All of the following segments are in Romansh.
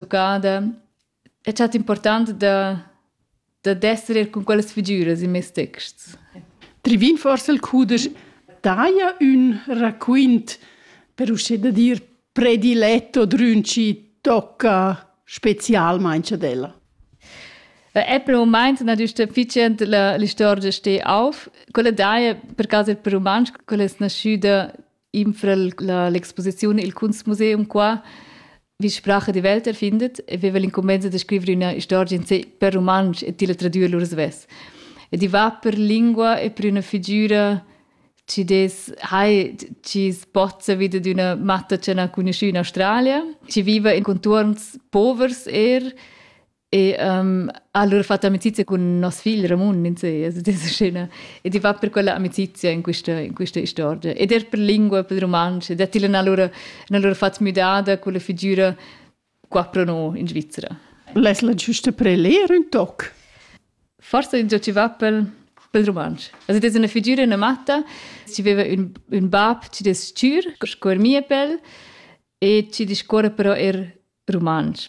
educada è stato importante da da d'esser er con quellas figuras in mes texts. Trivin forse il cudesch daia un raquint per uscire da dir prediletto drün ci tocca specialmente della. Apple moment natürlich efficient la, la storia ste auf. Quella daia per caso per romansch quella è nasciuta infra l'exposiziun Il Kunstmuseum qua, wie Sprache die Welt erfindet, e veva l'incumbensa da scrivere üna istorgia in sé per rumantsch e tilla tradüer lur svess. E di va per lingua e per üna figüra ci des hai ci spozza vida d'üna matta che n'ha conosciü in Australia, ci viva in contuorns povers er, E um, allora ho fatto amicizia cun nos figl Ramun in sé, also diese scena. Ed i va per quella amicizia in questa, in questa storia. Ed er per lingua, per romansch. Ed ella n'ha allora, n'ha allora fatto müdada con la figura qua pro noi in Svizzera. L'es la giusta per leer un toc? Forse in ci va per, per romansch. Also das ist eine Figur, eine Matta. Sie aveva un, un bab, ci des Tür, scuor mie pel, e ci discorre però er romansch.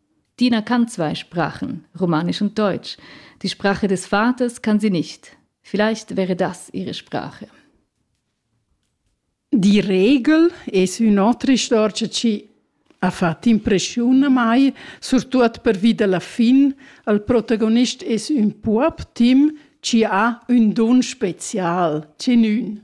Dina kann zwei Sprachen, Romanisch und Deutsch. Die Sprache des Vaters kann sie nicht. Vielleicht wäre das ihre Sprache. Die Regel es un autre istorici ci ha fatto impressione mai, surtut per via della fin, al protagonist es un pup Tim ci ha un don special, ci nun.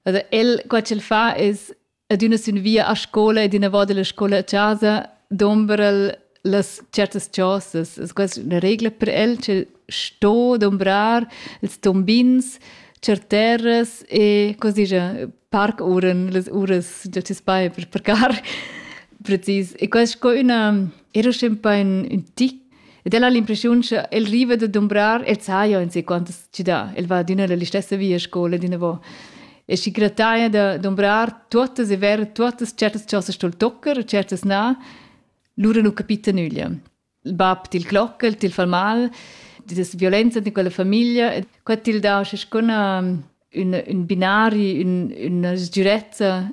Also el, qua ch'el fa es Ed üna sün via a scola ed inavò della scola a chasa dombra'l las certas chosas. Es questa üna regla per el che sto dombrar ils tombins cer terras e cosa dice parkuren, las uras da ti spai per parcar precis. E questa sco üna era sempre un, un tic Ed el ha l'impressiun che el riva da dumbrar, el sa jo in se quantas ci dà, el va adüna la stessa via a scola d'ina vo. E si grataia da dumbrar tuottas e ver tuottas certas cosas stol tocker, certas na, lura nu capita nüglia. Il bab til clocca, el til fa mal, das violenza di quella famiglia, e qua til dà sco una, un, un binari, un, una sgürezza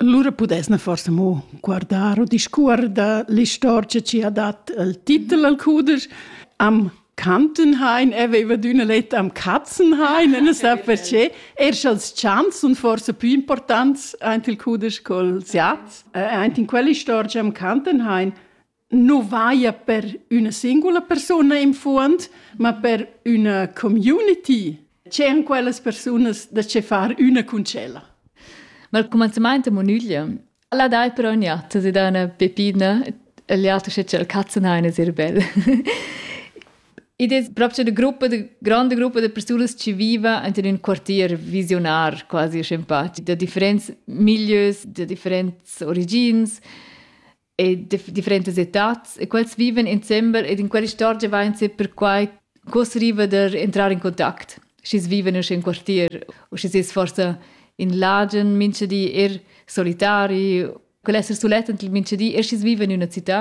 Lura pudess na forsa mo guardar u discuor da l'istorgia chi ha dat il titel al cuder. Am Kantenhain aveva d'üna letta am Katzenhain, e non sa perché. Er sch'als chants sun forse più importants aint il cuder col siat, äh, aint in quell'istorgia am Kantenhain, nu vaia per üna singula persuna in fuond, ma per üna community. C'èn quellas persunas da che far üna cun tschella? Ma il comenzimaint da munüglia la dai però in iatta si da üna pepina e l'auter sche c'è il cazzenaine sehr bel. Id es proprio da gruppa, da grande gruppa de persunas che viva in un quartier visionar, quasi simpatico, da differents milieus, da differents origins. e differentas etats e quels viven insembel ed in quell'istorgia vain se perquai cos riva der entrar in contact schis viven usch in quartier u schis es forsa in lagen mincha di er solitari quel esser sulet ent mincha di er schis viven in üna città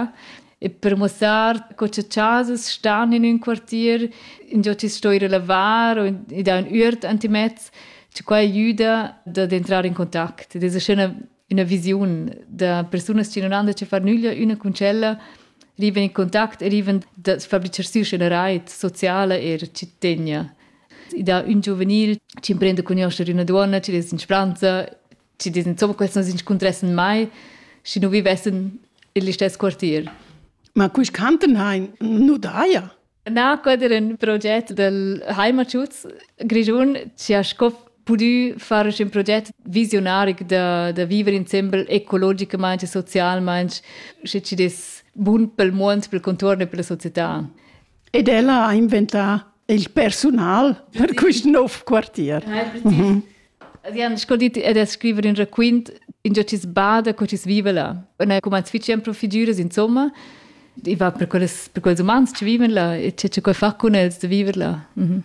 e per muossar co cha chasas stan in ün quartier ingio chi sto ir a lavar o i dà ün üert antimez che quai aiüda dad entrar in contact ed es üschena üna visiun da persunas che non han da che far nüglia üna cun tschella riven in contact e riven da fabricar siu scenareit sociale e cittadina. I dà un giuvenil che imprende a conoscere una donna, che des in spranza, che des insomma quels non s'inscuntrassen mai, si non vivessen in l'istesso quartier. Ma cui canten hein? Nu daia. Na, quai era in proget dal Heimatschutz Grischun che ha sco pudü far ün proget visiunaric da, da viver insembel ecologicamaing e socialmaing, sche chi'd es bun pel muond, pel contuorn e pella società. Ed ella ha inventà il persunal per quist nouv quartier. Mhm. Vian scoldit ed es scriver ün raquint ingio chi's bada co chi's viva là. Un ha cumanz fich sempre figüras insomma. I va per quels, per quels umans chi vivan là e che che far cun els da viver là. Mhm.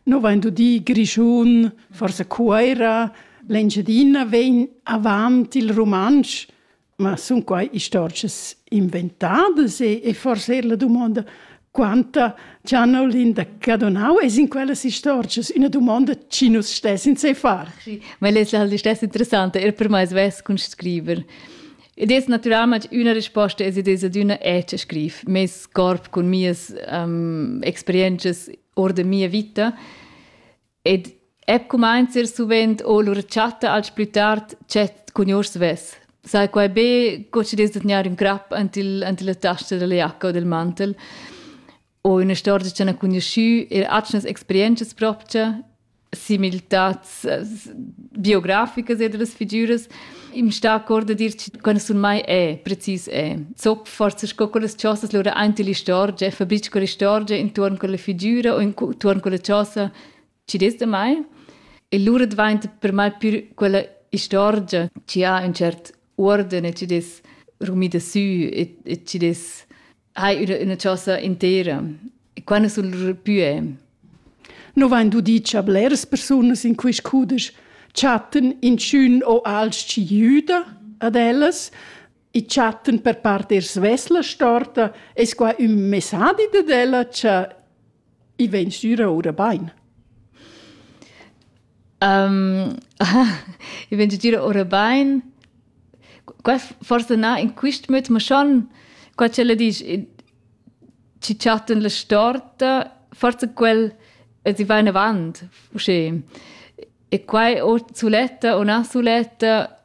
No vain dudi Grischun, forsa Cuoira, l'Engiadina vegn avant il rumantsch Ma sun quai istorgias inventadas e, e forse er la dumonda quanta Gianolin Cadonau es in quellas istorgias üna dumonda chi nus stess in se far. Ma el es l'istess interessanta er per mai svess cun scriver. Ed es naturalment üna risposta es id es ad üna echa scriv meis corp cun mias um, experienzas or da mia vita Ed Eb cumainza ir suvent o lur chatta als plü tard dschet cun gnur svess. Sai quai be co chi dess da tgnair ün crap ant il ant illa tasta dalla giacca o dal mantel. O üna storgia ch'han cugnuschü eir atgnas experientschas propcha, similtats biograficas eir da las figüras. Im sta accord a dir quando sun mai è precis è. Zop forse sco con las chosas lura aint l'istorgia, fa bitch con l'istorgia intorno con la figura o intorno con la chosa ci des da mai. E lura dvainta per mai più quella istorgia ci ha un cert ordine, ci des rumida sü e, e ci des hai üna, üna chosa intera. Quando sul pue? No vain dudi cha bleras persunas in quist cudesch chattan inchün o alch jüda ad ellas e chattan per part er svesla storta, es qua ün messadi dad ella cha I vegn stüra oura bain. Um, I vegn stüra oura bain. Qua forsa na in quist möd, ma schon qua ch'ella disch chi chattan la storta, forsa quel e si va in avant, usché. E quai o suletta o na suletta,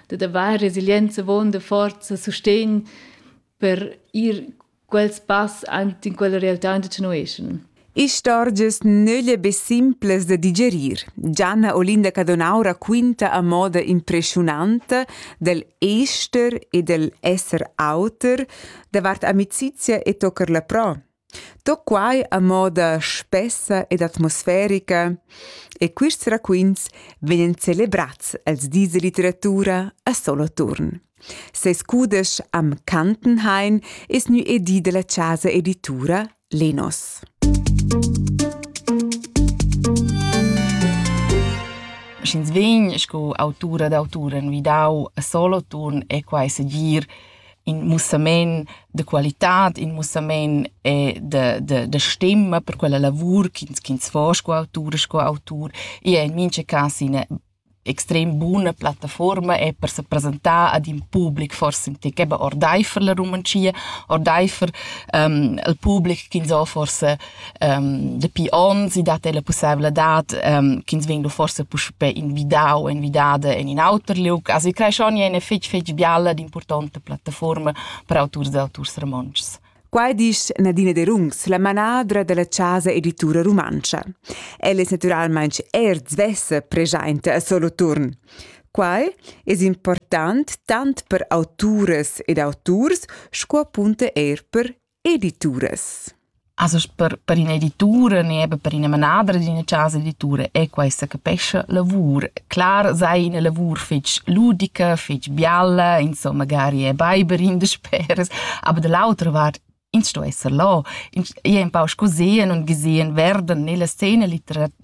dad avair resilienza avon da forza sustegn per ir quels pass ant in quella realtà in continuation. Istorgias nölle be simples da digerir. Gianna Olinda Cadonaura quinta a moda impressionanta del ester e del esser auter davart amicizia e tocar la pro. Tut quai a moda spessa ed atmosferica e quists raquints vegnan celebrats els dis da litteratura a Soloturn. Ses cudesch am Kantenhain es gnü edì da la chasa editura Lenos. Sch'ins vegn sco autura d'autura envidau a Soloturn è quai segir in mussament da qualitad, in mussament e da, da, da stemma per quella lavur ch'ins ch'ins fa sco autur, sco autur. E in mincha cas ina extrem buna plattaforma è per se presentar ad in public forse in tec eben ordeifer la Rumantschia, ordeifer um, al public ch'ins ha forse um, dapi ons i dat la pussevladad um, ch'ins vegn forse puspè invidau invidada en in auter liug. Also i creschon è fetg fetg bialla d'importanta plattaforma per auturs e auturs romontschs. Qua dice Nadine De Rungs, la manadra della Casa Editura Rumancia. Ella è naturalmente er svessa presente a solo turn. Quai es important tant per autores ed autors sco appunto er per Edituras. Also per, per ina editura né eben per ina manadra d'ina casa editura è questa capescha lavur. Clar sei ina lavur fetg ludica, fetg bialla, insomma magari è beiber in de speres, aber dall'autra vart ins sto esser là, ins è un pau scosehen und gesehen werden nella scena litera-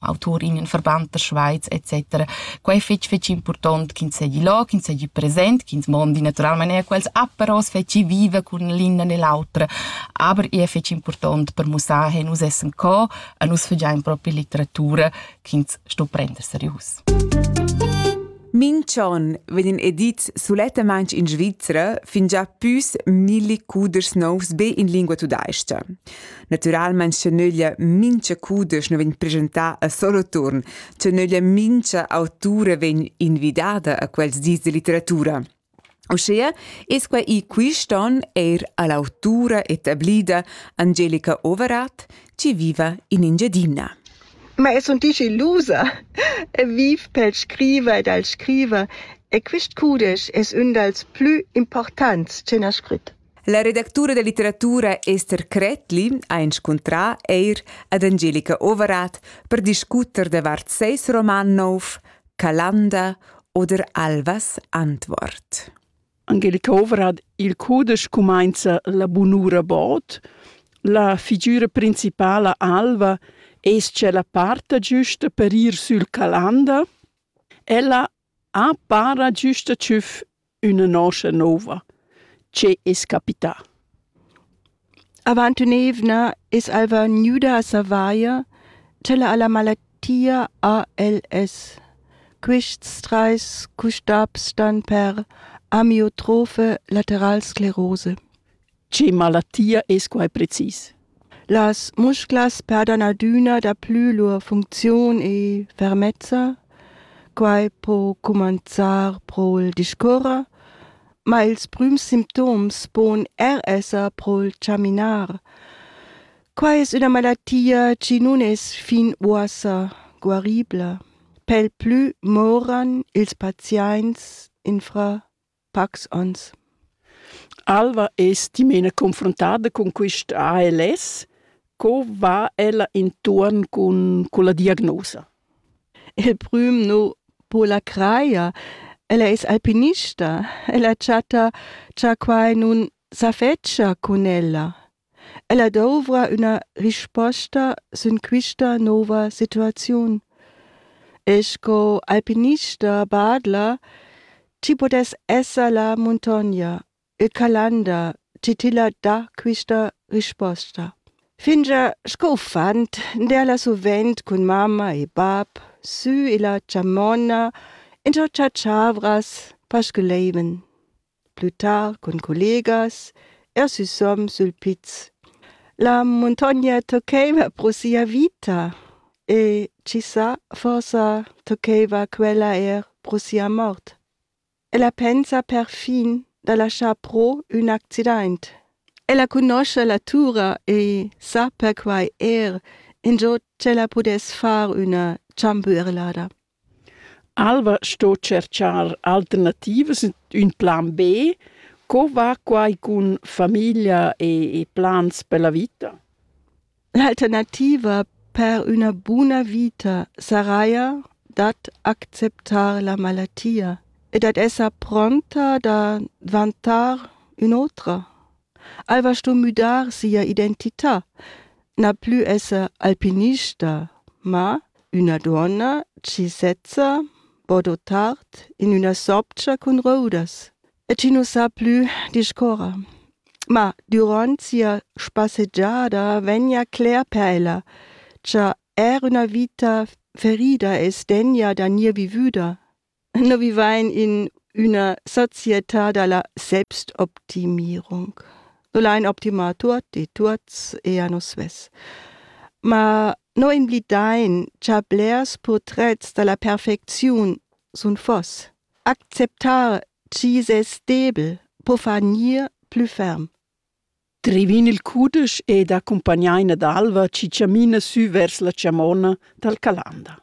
auturin, verband der Schweiz etc. Quei è fetg fetg impurtont ch'ins seigi là, ch'ins seigi present, ch'ins mondi naturalmein er quels aperos fetgi viva cun l'inna ne l'autra. Aber è fetg impurtont per mussar che nus essen co e nus fagein proprio litteratura ch'ins sto prender serius. Minchon vegn edits sulettamain in Svizzera fingià püs milli cuders novs be in lingua tudais-cha. Naturalmein schenöglia mincha cudesch nu vegn presentà a solo turn, schenöglia mincha autura vegn invidada a quels dis de litteratura. Uschea es quai i quist on eir a l'autura etablida Angelica Overath, chi viva in Engiadina. Ma es un dici ilusa e viv pel scriver ed al scriver e quist cudesch es ün dals plü importants che n'ha scrit. La redactura da litteratura Esther Krättli ha inscuntrà eir ad Angelica Overath per discuter davart seis roman nouv Calanda oder Alvas Antwort. Angelica Overath il cudesch cumainza La bunura bod. La figura principala Alva es-cha la parta giusta per ir sül Calanda. Ella A para güsta tschüf üna noscha nouva. Che es capità? Avant ün'eivna es alva gnüda a savair ch'ella ha la malattia ALS. Quists trais custabs stan per amiotrofe lateralsclerose. Che malattia es quai precis? Las musclas perdan adüna daplü lur funcziun e fermezza. Quai po cumanzar pro'l discuorrer, ma ils prüms simptoms pon er esser pro'l chaminar. Quai es üna malattia chi nun es fin uossa guaribla. Pel plü moran ils paziaints infra pacs ons. Alva es dimena confrontada cun quist ALS. Co va ella intuorn cun culla diagnosa? Il prüm nu po la crajer. Ella es alpinista. Ella chatta cha quai nun s'affedscha cun ella. Ella dovra üna risposta sün quista nouva situaziun. E sco alpinista badla, chi pudess esser la muntogna, il Calanda, chi tilla dà quista risposta. Fingià sco uffant derla suvent cun mamma e bap sü illa chamonna in cho chatschavras pasculeiven. plü tard cun collegas, er süsom sül piz. La muntogna toccaiva pro sia vita e chi sa, forsa toccaiva quella eir pro sia mort. Ella pensa perfin da laschar pro ün accidaint. Ella cunoscha la tura e sa perquai eir ingio ch'ella pudess far üna chamberlada. Alva sto tscherchar alternativas, ün plan B. Co va quai cun famiglia e e plans per la vita? L'alternativa per üna buna vita saraja dad acceptar la malatia e dad esser pronta da dvantar ün'otra. Ei va sto müdar sia identità, na plü esser alpinista, ma üna duonna chi sezza bodo tard in üna sobgia cun roudas e chi nu sa plü discuorrer. Ma dürant sia spassegiada vegna cler per ella, cha eir üna vita ferida es degna da gnir vivüda. Nous vivain in üna società da la Selbstoptimierung. No l'hain optimà tuot e tuots e a nus svess. Ma no invlidain cha blers purtrets da la perfecziun sun fos. Acceptar chi's es stabel po far gnir plü ferm. Drivin il cudesch ed accumpagnain ad alva chi chamina sü vers la chamonna dal Calanda.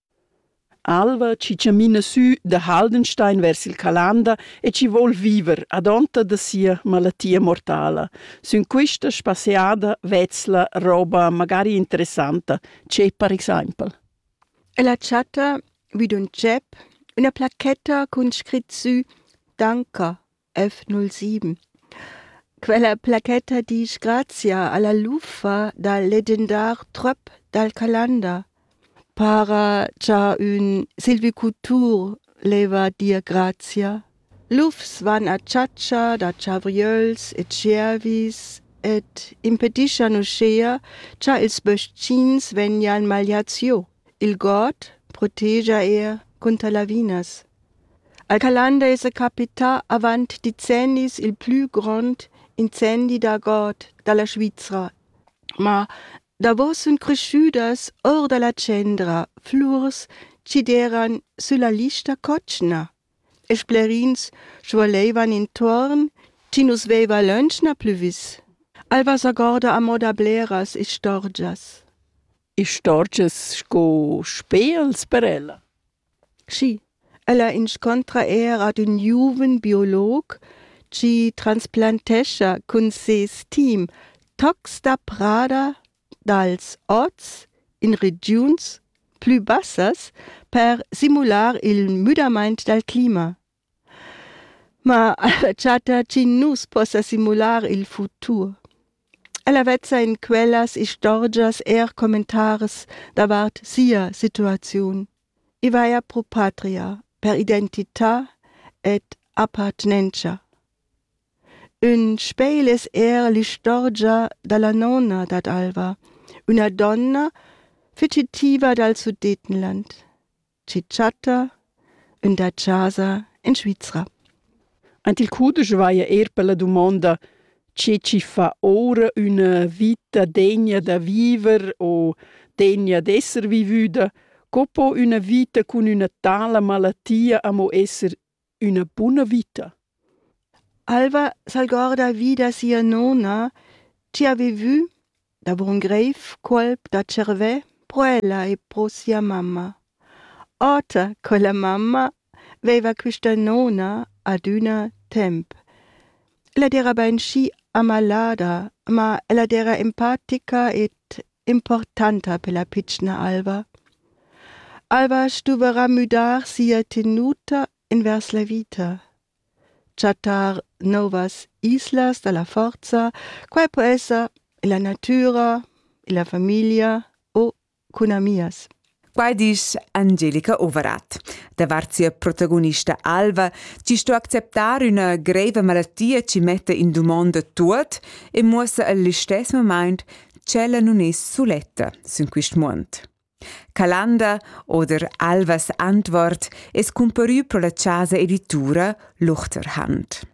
Alva chi chamina sü da Haldenstein vers il Calanda e chi voul viver adonta da sia malatia mortala. Sün quista spasseada vezla roba magari interessanta, che per exaimpel. Ella chatta vi d'ün tschep üna placchetta cun scrit sü Danker. F07. Quella plachetta disch grazia alla luffa dal legendar tröp dal Calanda. Para cha ün silvicultur leva dir grazia. Lufs van a chatscha da chavriöls e tschiervis ed impedischan uschea cha ils bös-chins vegnan magliats giò. Il god protegia er cunter lavinas. Al Calanda esa capità avant decennis il plü grond incendi da god da la Svizra. Ma davo sun creschüdas our da la tschendra flurs chi deran sülla lista cotschna e splerins svuoleivan intuorn chi nu's veiva lönch na plü vis. El vasagorda a moda bleras istorgias. istorgias sco spels per ella? Schi, ella inscontra eir ad ün giuven biolog chi transplantescha cun ses team tocs da prada dals ots in regiuns plü bassas per simular il müdamaint dal clima. Ma ella chatta chi nu's possa simular il futur. Ella vezza in quellas istorgias eir commentaris davart sia situaziun. I vaja pro patria, per identità ed appartenentscha. Ün spegl es eir l'istorgia da la nona dad Alva, üna donna fugitiva dal Sudetenland. chi chatta ün da chasa in Svizra. Ant il cudesch vaia eir per la dumonda che ci fa ora üna vita degna da viver o degna d'esser vivüda, co po üna vita cun üna tala malattia amo esser üna buna vita. Alva s'algorda vi da sia nona chi ha vivü da bun greiv cuolp da tschervè pro ella e pro sia mamma. Oter quella mamma veiva quista nona adüna temp. Ella d'eira bainschi amalada, ma ella d'eira empatica ed importanta per la pitschna alva. Alva stuverà müdar sia tenuta invers la vita. Chattar novas islas da la forza, quai po esser illa natüra, illa famiglia o cun amias. Quai disch Angelica Overath. Davart sia protagonista Alva ci sto acceptar üna greiva malattia ci metta in dumonda tuot e muossa al istess moment ch'ella nun es suletta sün quist muond. Calanda oder Alvas antwort es cumparü pro la chasa editura Luchterhand.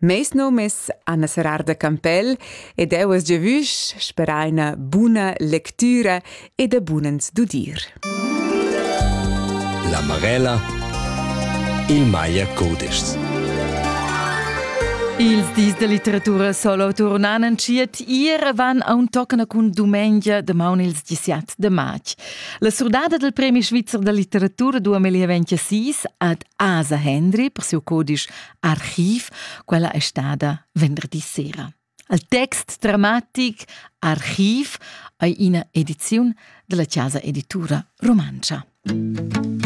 Meis nom es Anna Serrar da Campell ed eu es giavüsch sperà üna buna lectüra e da bunens dudir. La Marella Il Maier Codeschs Ils dis da litteratura solo turnan entschiet ir van a un toccana cun dumengia damaun ils 17 de march. La surdada del Premi Svizzer da litteratura 2026 ad Asa Hendry per siu codisch Archiv, quella è stada venderdi sera. Al text dramatic Archiv è ina ediziun della Casa Editura Romancia.